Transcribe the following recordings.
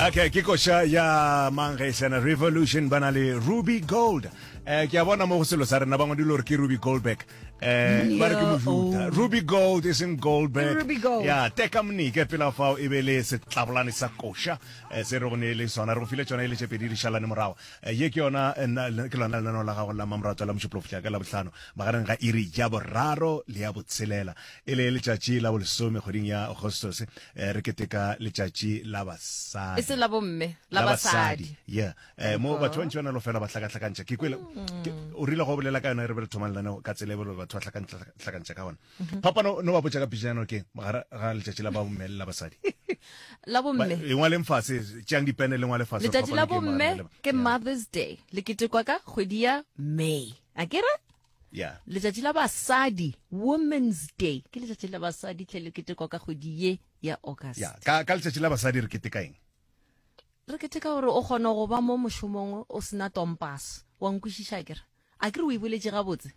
okay ke koša ya mangaisana revolution ba na le ruby gold um ke a bona mo go selo sa rena bangwe dilo gore ke ruby goldberg um ba re ke mofuta oh. ruby gold e seng goldberg ya teka mnike pela fao e be le setlabolane sa koša um se re go ne le sona re go file tsona e le tšepedi di šalane morago um ye ke yona ke lona lenaneo la gago la mamoratwa la mošupolofotla ka labotlhano magareng ga iri ya boraro le ya botshelela e le letšatši la bolesome kgweding ya agostos eh, re keteka letšatši la basadi e se la bomme la basadi yeah eh, mo batho ba ntši ba na le go fela ba hlakahlakantšha ke kwele ke- o rile go bolela ka yona re be re thoma lenaneo ka tsela e belo batho ba hlakahlakantšha ka gona papa no no ba botša ka pitšana ke mogara ga letšatši la bomme le la basadi la Ba- bomme e ngwaleng fase tšeang dipene le ngwale fase letšatši la bomme ke mothers day le ketekwa ka kgwedi ya may a kere Yeah. letšatši la basadi women's day ke letšatši la basadi tle le ketekwa ka kgwedi ye ya august Yeah. Ka, ka letšatši la basadi re keteka eng? re keteka gore o kgona go ba mo mošomong o sena tompas wa nkwešiša kere a ke re o e boletše gabotse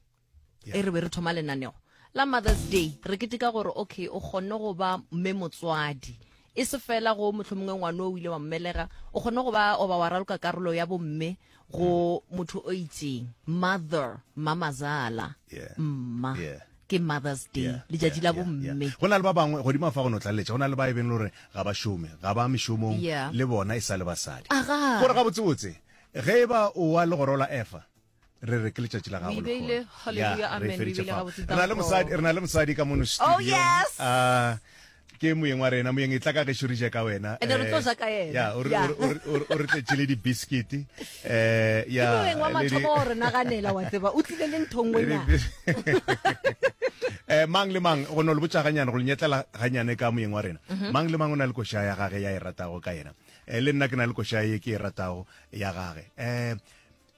Yeah. e re be re thoma lenanego la mothers day re keteka gore okay o kgonne go ba mme motswadi E se fela go mohlomongwe ngwane o ile wa mmelega, o kgone go ba oba wa raloka karolo ya bomme go motho o itseng. Mother, mamazala, Yeah. mma. Yeah. Ke Mother's Day, Yeah, letšatši yeah, la yeah, bomme. yeah. go na le ba bangwe godimo fa go no tlaleletša go na le ba e beng le gore ga ba šome ga ba mešomong Yeah. le bona e sa le basadi Aga. gore gabotsebotse ge e ba o wa legoro la efa re re ke letšatši la gago rena le mosadi rena le mosadi ka mono oh, studio ah, ke moyeng wa rena moyeng e tla ka gešo re je ka wena eh, ya o re tletše le di-biscuit um eh, eh, mang le mang go no le botsa ganyane go lenyetlela ganyane ka moyeng wa rena mhm. mang le mang o na le koša ya gage ya e ratago ka yena um le nna ke na le koša ye ke e ratago ya gage um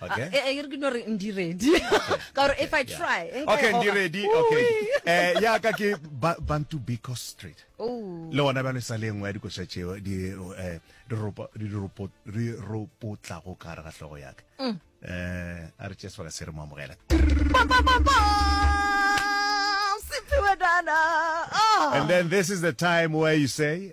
okay ah, eh, eh, e re ke no re ndi ready ka gore if i try eh, okay ndi ready okay eh ya ka ke bantu biko street oh le ona ba le sa lengwe ya dikoša tšeo di eh di ropo di ropo di ropo tla go ka re ga hlogo ya ka mm. eh a re tšesa ka se re mo amogela And then this is the time where you say,